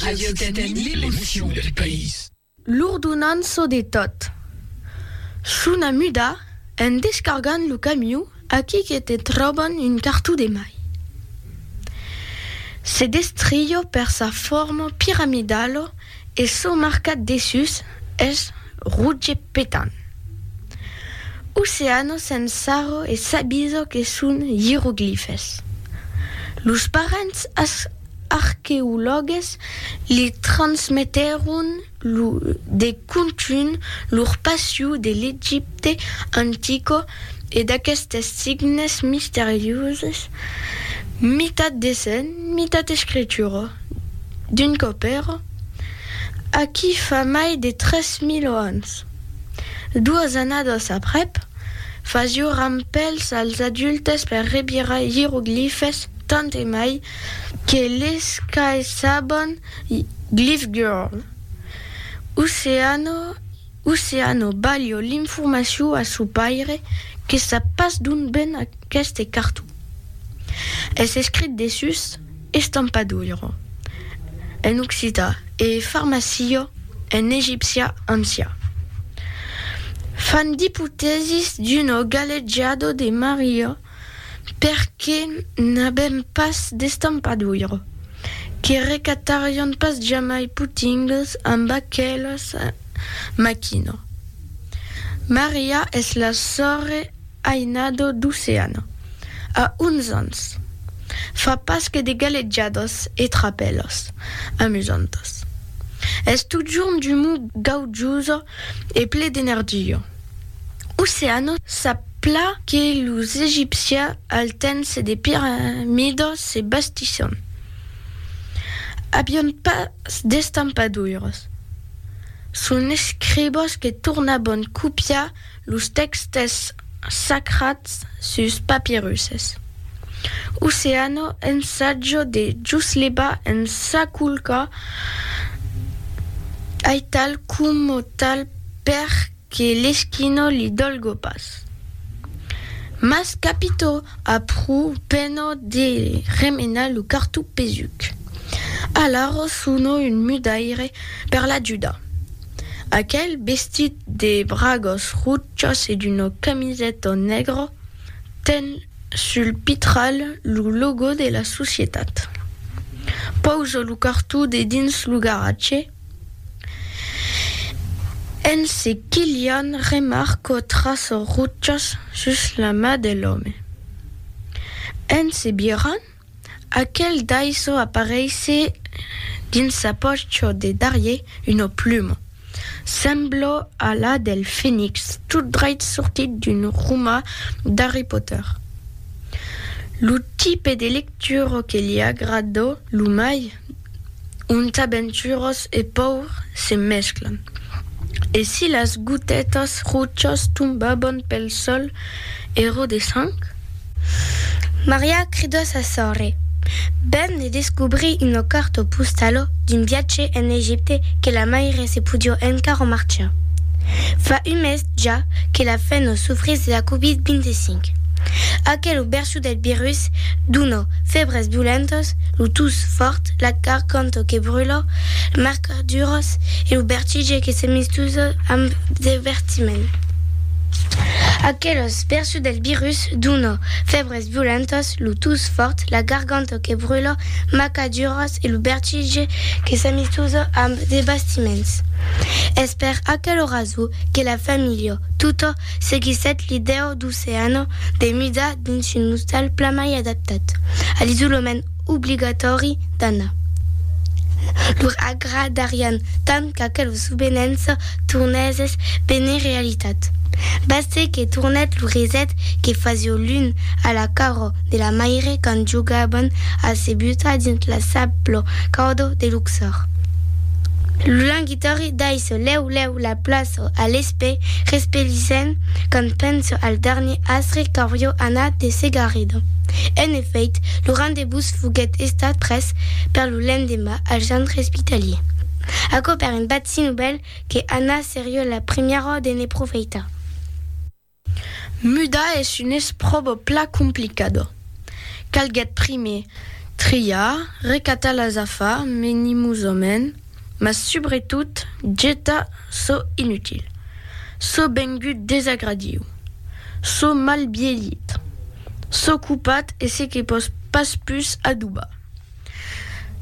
Radio Occitanie, l'emocion del país. L'ordonança de tot. Chuna muda, en descargant lo camiu, aquí que te tròban un cartó de mai. Se destrió per sa forma piramidala e çò marcat dessús es roge petant. Oceano s'ensarra e s'avisa que son ieroglifes. Los parents as. arqueològues li transmetèron lo de contunh lor passion de l'Egipte antico e d'aquestes signes misterioses, mitat dessenh, mitat escritura, d'un còp èra aquí fa mai de 3000 ans. Doas annadas aprèp, fasió rampèls als adultes per revirar ieroglifes tant e mai, Que les qu'ai saban Glyph Girl, Oceano Oceano balho l'informacion a son paire que sap pas d'ont ven aqueste carton. Es escrit dessús Estampadoiro en occitan e Farmacio en egipcian ancian. Fan d'ipotèsis d'uno galejado de Maria. perque n'avèm pas d'estampadura, que recatarion pas jamai putingues amb aquela maquina. Maria es la sòrre ainada d'Oceana, a 11 ans, fa pas que de galejadas e trapèlas amusantas. Es totjorn d'umor gaujosa e ple d'energia. Oceano sap plan que los egipcians al temps des piramidas se bastisson avián pas d'estampadoiras. Son escribas que tornavan copiar los tèxtes sacrats sus papirusses. Oceano ensatja de juslevar en sa culca aital coma tal Per que l'esquino li dolgo pas. Mas capito aprú peno de remenar lo cartó pesuc. Alara sono un mudaire per l'ajudar. Aquel bestit de bragas rochas e d'una camiseta negra ten sul pitral lo logo de la societat. Pausa lo cartó dedins lo garatge. En se quilhant, remarco traço rutjas sus la ma de l'òme. En se birrant, aquel daisò apareisse dins sa pòcho de darrier una pluma, semblo a la del fenix tot dreit sortit d'un roma d'Harry Potter. Lo tipe de lectura que li agrada lo mai? onta venturós e paur se mesclan, e si las gotetas rochas tombaban pel sol ero de sang. Maria cridó sa sòrre, ben de descobrir una carta postala d'un viatge en Egipte que la maire se podió encara marchar. Fa un mes ja que la fenna sofrís de la Covid-25. Aquela version Lo del virus duna febres violentas, lo tus fòrt, la garganta que brula, marcaduras e lo vertige que se mistusa amb devertiment. Aquelas versions del virus duna febres violentas, lo tus fòrt, la garganta que brula, marcaduras e lo vertige que se mistusa amb devertiments. Es per aquela rason que la familha tota seguissèt l'idèu d'oceana de mida dins un ostal plan mai adaptat a l'isolament obligatòri d'Anna. Lor agradarián tant qu'aquela subvenença tornèsses benir realitat. Bastèt que tornèt lo reset que fasió l'un a la cara de la maire quand jogaban a se butar dins la sabla cauda de luxar. Territòri daissò lèu lèu la plaçò a l'espè respelissent quand pensò al darnier astre qu'aurió anat de Segarredon. En efèit, lo rendez-vous foguèt estat pres per lo lendemà al centre espitalier. Aquò per un bat si novèl que Anna serió la primièra de ne profeitar. Mudar es un espròbo plan complicat. Calguèt primièr triar, recatar las afars menimosament, mas subretot getar çò inutil, çò vengut desagradiu, çò mal bielhit, çò copat e se que pòs pas pus adobar.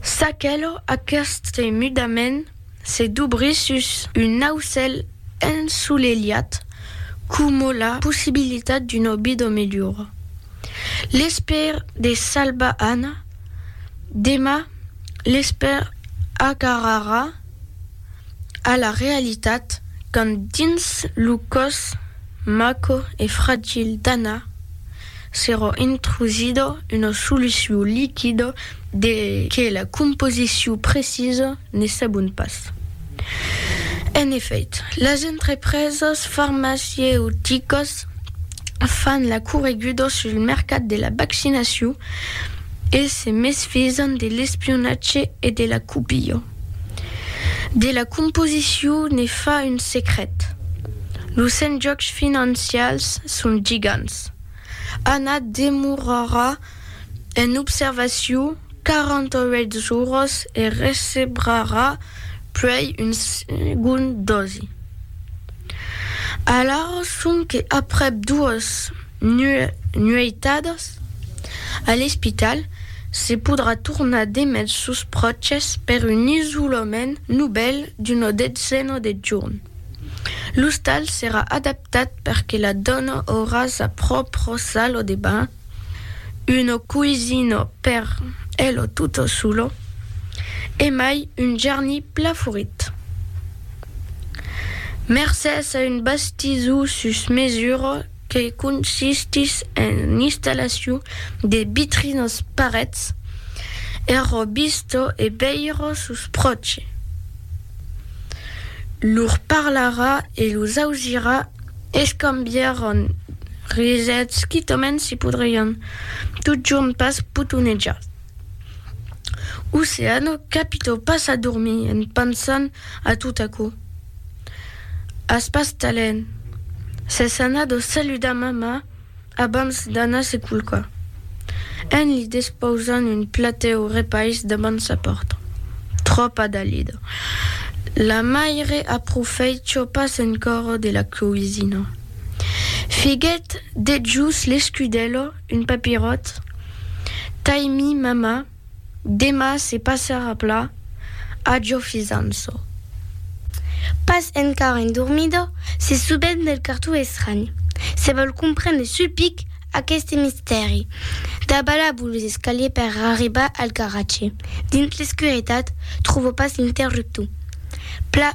S'aquelò, aqueste mudament Se dubrir sus un aucèl ensolelhat coma la possibilitat d'una vida melhora. L'espèr de salvar Anna, demà l'espèr agarrarà a la realitat quand dins lo còs maco e fragil d'Anna, S'èra intrusida una solucion liquida de que la composicion precisa ne sabon pas. En efèit, las entrepresas farmacieuticas fan la correguda sul mercat de la vaccinacion e se mesfisan de l'espionatge e de la copia. De la composicion ne fa un secret. Los enjòcs financials son gigants. Anna demorarà en observacion 48 jorns e recebrarà puèi un segond dosi. Alara sonque aprèp 2. nueitadas a l'espital, se podrà tornar d'emet sos pròches per un isolament novèl d'una detzena de jorn. L'ostal serà adaptat per que la dòna aurà sa pròpra sala de banhs, una coisina per ela tota sola e mai un jarni pla furit. Mercés a un bastizor sus mesura, que consistís en l'installacion de vitrinas parets ero bisto e veiro sus pròche. Lor parlarà e los ausirà escambièron risets quitament se podrián totjorn pas potonejar. Oceano capitò pas a dormir en pensant a tot aquò. As pas talent! S'es anat o saludar mamà abans d'anar se culcar, en li despausant un platèu o repais davant sa pòrta. Tròpa dalida! La maire aprofèitja pas encòra de la coisina. Figuèt dejús l'escudèla, un papiròt, tai-mi mamà. Dema se passarà pla, ajo fisanço. Pas encara endormida, se subent del cartó estranh. Se vòl comprendre sul pic aqueste mistèri. Dabalabo los escaliers per arribar al garatge. Dins l'escuretat, tròvo pas l'interruptor. Pla,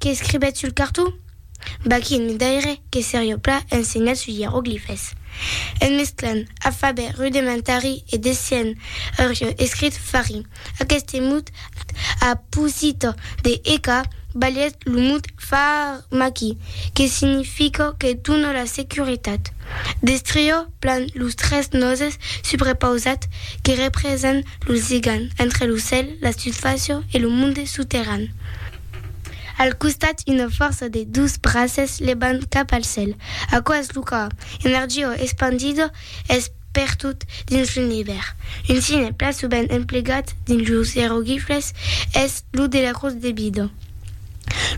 Qu'escribèt sul carton? Bah, quin midaire que serió pla ensenhat sus ieroglifes! En mesclant afabè rudementari e desien aurió escrit fari. Aqueste mot a posito de eca balhèt lo mot pharmaki, que significa que dona la securitat. Destrió plan los tres nòses subrepausat que representan lo ligam entre lo cèl, la sufàcia e lo monde soterran. Al costat una fòrça de dos braces levant cap al cèl. Aquò es lo còr, energia espandida es pertot dins l'univèrs. Un signe plan sovent emplegat dins los ieroglifes es lo de la crotz de vida.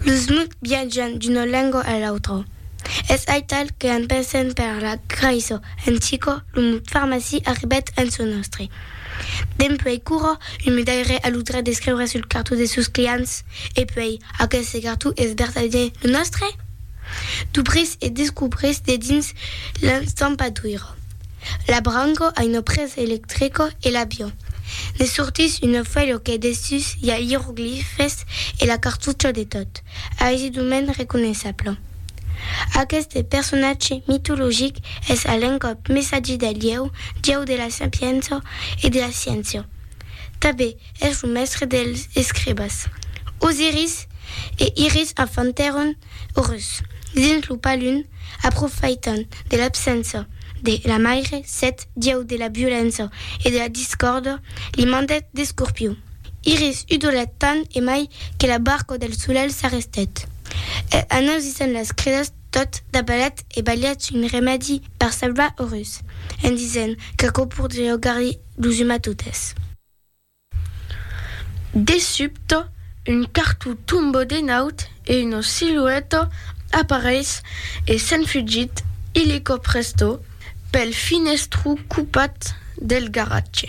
Los mots viatjan d'una lenga a l'autra. Es aital que en pensent per la Craiçò en Chico, lo mot farmacia arribèt en çò nòstre. Dempuèi Curro, un mudaire a lo drech d'escriure sul cartó de sos clients. E puèi, aqueste cartó es vertadièr lo nòstre? Dubrís e descubrís dedins l'estampadoiro. L'abrango a una presa electrico e l'aviò. Ne sortís una fuèlha que dessús i a ieroglifes e la cartucha de tot. Ais d'un mens reconeissable. Aqueste personatge mitologic es a l'encòp messatge del Ieu, Dieu de la sapiença e de la sciéncia. Tanben es lo mèstre dels escribas. Osiris e Iris enfantèron Orus dins lo palun, aprofaitant de l'absença de la maire, Set, Dieu de la violença e de la discòrda, li mandèt d'Escorpiu. Iris udolat tant e mai que la barca del solelh s'arrestèt. E anoisissent las cridas tot dabalat e balhèt un remèdi per salvar o rus, en disent qu'aquò pordriá augar-li lo zuma totes. De subte, un cartó tomba de naut e una silueta apareis e se'n fugit illico presto pel finestró copat del garatge.